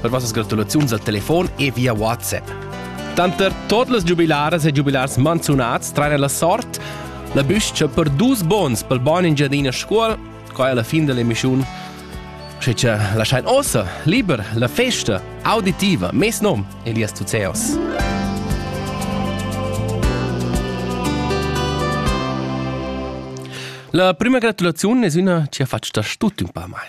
per vossas gratulaziuns al telefon e via WhatsApp. Tanter tot las giubilaras e giubilars manzunats traina la sort la büscha per dus bons pel bon in giardin a scuol, qua è la fin dell'emissiun. Sche ci lasciai ossa, liber, la festa auditiva, mes nom Elias Tuzeos. La prima gratulazione es üna chi ha fatg da tut ün pa mai.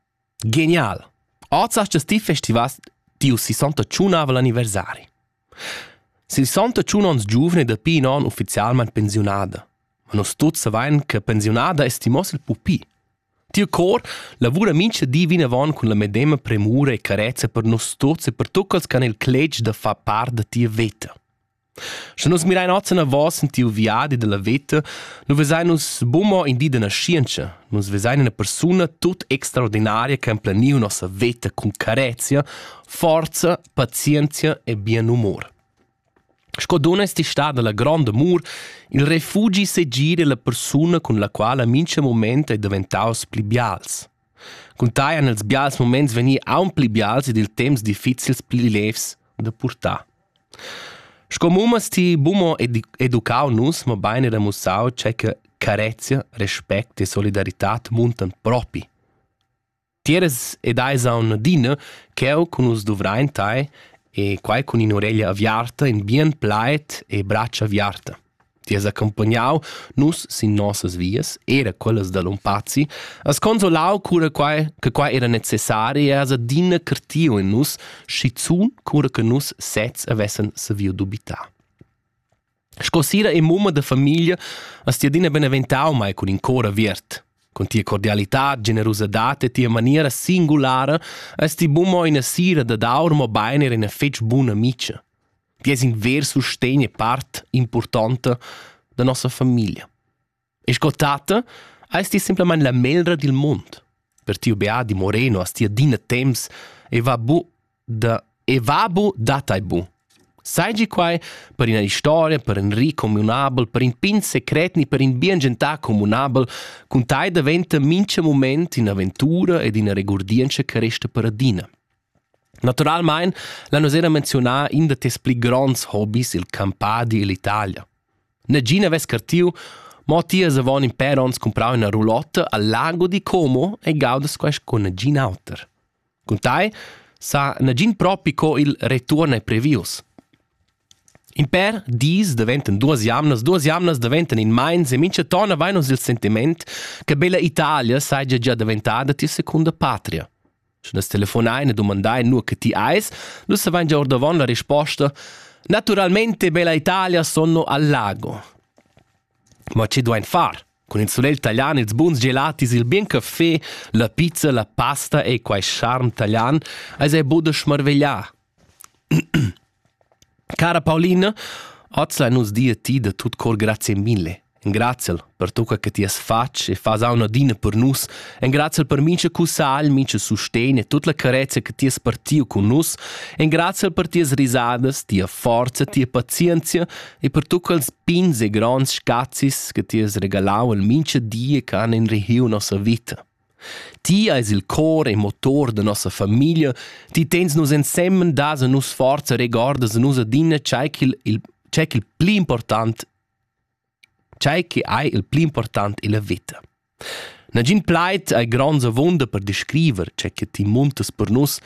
Genial! Oz has ti festivà tiu sesonta tschunnavel anniversari. Sesonta tschun onns giuvna è dapi in onn ufficialmain pensiunada. Ma nus tuts savain che pensiunada è stimoss il pupi. Tiu cor lavura mincha di vinavon cun la medema premura e carezia per nus tuts e per tuccals che han il cletg da far part da tia veta. Sche nus mirein oz enavos en tiu viadi dalla veta, nu vesein nus buca in di da naschientscha. Nus vesein ina persuna tut extraordinaria che ha emplaniu nossa veta cun carezia, forza, pazienzia e bien humor. Sco dunna esti stada la grond amur il refugi segir della persuna cun la quala mincha moment ei daventaus pli bials. Cun tai han els bials moments vegni aunc pli bials ed il temps difficils pli levs da purtar. Sco mum has ti buca educau nus, mobein era mussau tgei che carezia, respect e solidaritad muntan propi. Ti eras ed eis aunc adina cheu cun nus duvrein tei e quei cun in'ureglia aviarta, in bien plaid e bratscha aviarta. Ti has accompagnau nus sin nossas vias, era quellas da Lompazi, has consolau cura quai che quai era necessari e has adina curtiu en nus, schizun cura che nus sezs havessen saviu dubitar. Sco sira e mumma da famiglia has ti adina beneventau mai cun in cor aviert. Con tia cordialità, generosidad e tia maniera singulara hast ti bu mo ina sira dad aur, mobein era ina fetg buna amica. che es in ver sustegn e part importanta da nossa famiglia. E sco tata ais ti simplamain la melra dil mund. Per tiu beadi Moreno as ti adina temps e va bu da e va bu da tai bu. Sai gi quai per ina historia, per in ri communabel, per in pin secret ni per in bien gentà communabel, cun tai daventa mincha moment in'aventura ed ina regurdientscha che resta per adina. Naturalmein l'han nus era menziunà in da tes pli gronds hobis, il campadi ill'Italia. Negin havess cartiu, mo tias avon in pèr onns cumprau ina roulotta al lago di Como e gaudas quest con negin auter. Cun tai sa negin propi co il return è previus. In per dis daventan duas jamnas, duas jamnas daventan in meins e mincha tona vai nos il sentiment che bella Italia saja già daventada tia secunda patria. Sche nus telefonain e dumandain nua che ti eis, nus savain gia ordavon la risposta. Naturalmente bella Italia sono al lago. Ma che duain far? Cun il sulegl talian, ils buns gelatis, il bien caffè, la pizza, la pasta e quai charm talian, eis ei buca smarveglià. Cara Paulina, oz lain nus dir a ti da tut cor grazie mille. Engraziel per tocca che ti has fatg e fas auna adina per nus. Engraziel per mincha cussagl, mincha sustegn e tut la carezia che ti has partiu cun nus. Engraziel per tias risadas, tia forza, tia pazienzia e per tocca els pins e gronds scazis che ti has regalau al mincha die che han in rehiu nossa vita. Ti eis il cor e motor da nossa famiglia, ti tens nus ensemen, das a nus forza, regordas a nus adina tgei ch'il, il, tgei ch'il pli important, tgei che ei il pli important ella veta. Nagin plaid ei gronds avunda per descriver, tgei che ti muntas per nus,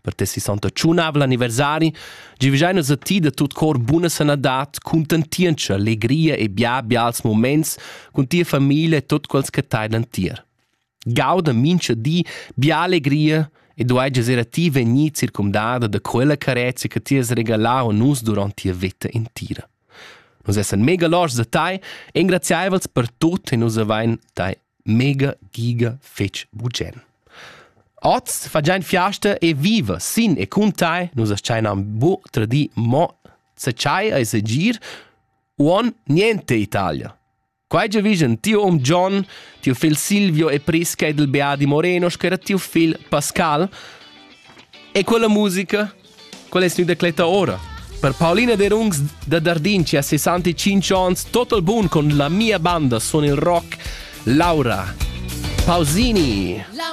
per tes 61 anniversari giuvegiai nus a ti da tut cor buna sanadad, cuntentientscha, legria e bia bials moments cun tia famiglia e tot quels che tailan tier. Gauda mincha di bia alegria e duai giazer a ti vegnir circumdada da quella carezia che ti has regalau a nus durant tia vita intira. Nus essan mega loschs da tai, engraziaivels per tut e nus avain tai mega giga fetg bugen. Oz fagein fiasta e viva sin e cun tai, nus astgeinan bu tradi mo se chai e se gir, uon niente Italia. Quai già vision tiu um John, tiu figl Silvio e Prisca ed il Beati Morenos, che era tiu figl Pascal, e quella musica Quel es gnü decletta ora. Per Paulina Derungs da Dardin, chi ha 65 ans, total bun con la mia banda sun il rock Laura Pausini. La